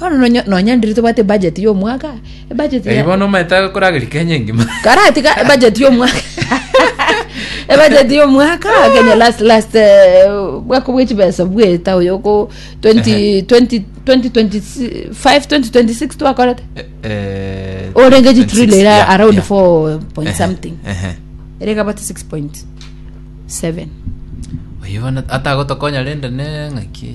Bono nonya nonya ndiri tobwate budget ya omwaka, ebudget Eyi ya bono omaete akorageria Kenya engima. karatiga ebudget ya omwaka ebudget ya omwaka Kenya last last eh, bwako bwe chibesa bweta oyo oko 20 20 2025 2026 twakorete Eh, orenge 26, jitrilo ira yeah, around yeah. 4 point Ehe, something ehe. ere kabati 6.7 Oyi bono atagotokonya rende ne ng'aki.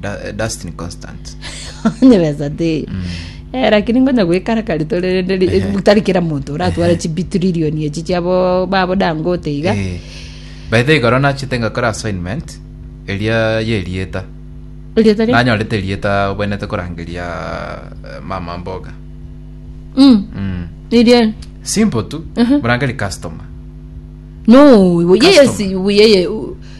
Da- eh, Dustin Constant. onye besa teyo Eh, lakini ngonya gwikara kari tore rende ri- Ehe. tari kera monto oratware Ehe. chibitrilioni echi chiabo babo dangote iga Eh, by the way, igoro nachete ngakora assignment eria yerieta Rieta ria- nanyorete rieta obwenete korangeria eh, mama mboga Mm, mm. irie simple tu Mhm. morangeri customer no iwe yeye Customer. si iwe yeye u-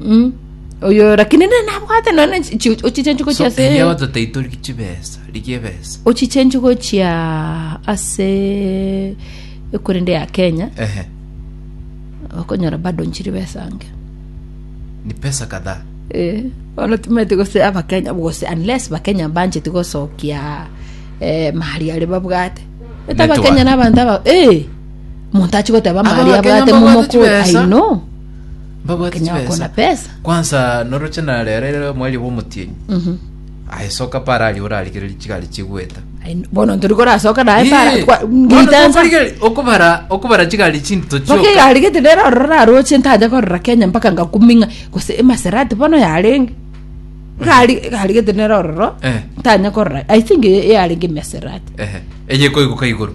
Mm. oyo lakini nere nabwate none ochichenchi gochia ase erio totaitwe chibesa rigia ebesa ochichenchi gochia ase ekorende ya kenya ehe okonyora bado nchiri besa ange ni pesa kadhaa Eh, ono timeti gose abakenya gose unless bakenya bancheti gosokia eh, mahari are babwate Eta Network. abakenya na abanto aba eh, omonto achi goteba mahari Abakenya abwate mbabwate momokore chibesa. i know Mbabwate Kenya wakona chibesa. pesa. Kwanza noroche narerere omwari bw'omotienyi. Ayesoka pare aria orarigereri chigari chigweta. Ai, Bono tori korasoka naye Ii, para. kwa- bono ngiritensa. tokorigeri- okobara okobara chigari chindito Mpaka chioka. egari gete nere ororo naroche ntaja korora Kenya mpaka ngakuming'a gose emaserati bono yarenge egari egari gete nere ororo Eh. ntanya korora i think eyarenge emaserati Ehe. Eye koiguka igoro.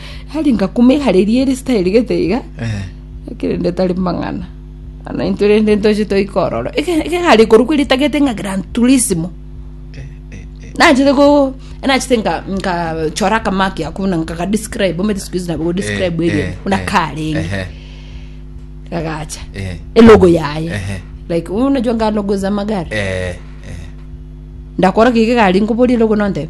Aria ngakumigara eria risitairi gete iga, Eh. ekero inde tari mang'ana, na intwe rende ntoche toike ororo. Eke- eke gari korokwa eritagete ng'a Gran Turismo. Eh, eh, eh. Nachete ko nachete nka nka chora kamaki ako na nka describe omete siku hizi nabo describe Eh, area eh, una eh, karenge ehe, kagacha eh, e logo yaye ehe, like unajua nga logo za magari eh, eh. ndakora kike gari ngoborie logo nonde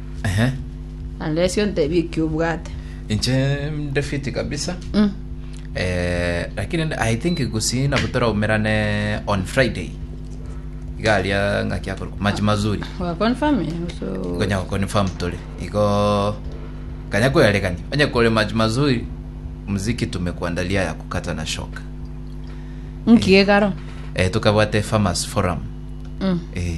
Ehe. Naende ase ontebie ekio obwate. Inche nde fiti kabisa. Mm. Eh, lakini nde- I think gusii nabo toraumerane on Friday. Iga aria ng'aki akorwa machi mazuri. Wa confirm eh, so. Ngonya confirm tore. Igo kanya kuyarekani. Onye kore machi mazuri muziki tumekuandalia ya kukata na shoka. Nkiegaro. Eh, tukabwate farmers forum. Mm. Eh,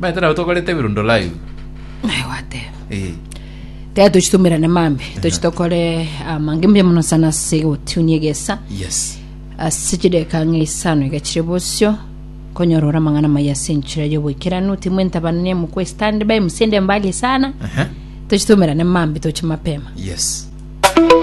Baete nabo tokorete ebirundo live. Naye gwateba Eh. taya tochitumerane mambe tochi tokore amange mbuya mono sana ase egotunia egesa Yes. ase chideka ng'a isano iga chire bosio konyora ore amang'ana maya ase enchera y'oboikeranu timu entabanania mokwe standby musende mbali sana Aha. tochitumerane mambe toche mapema Yes.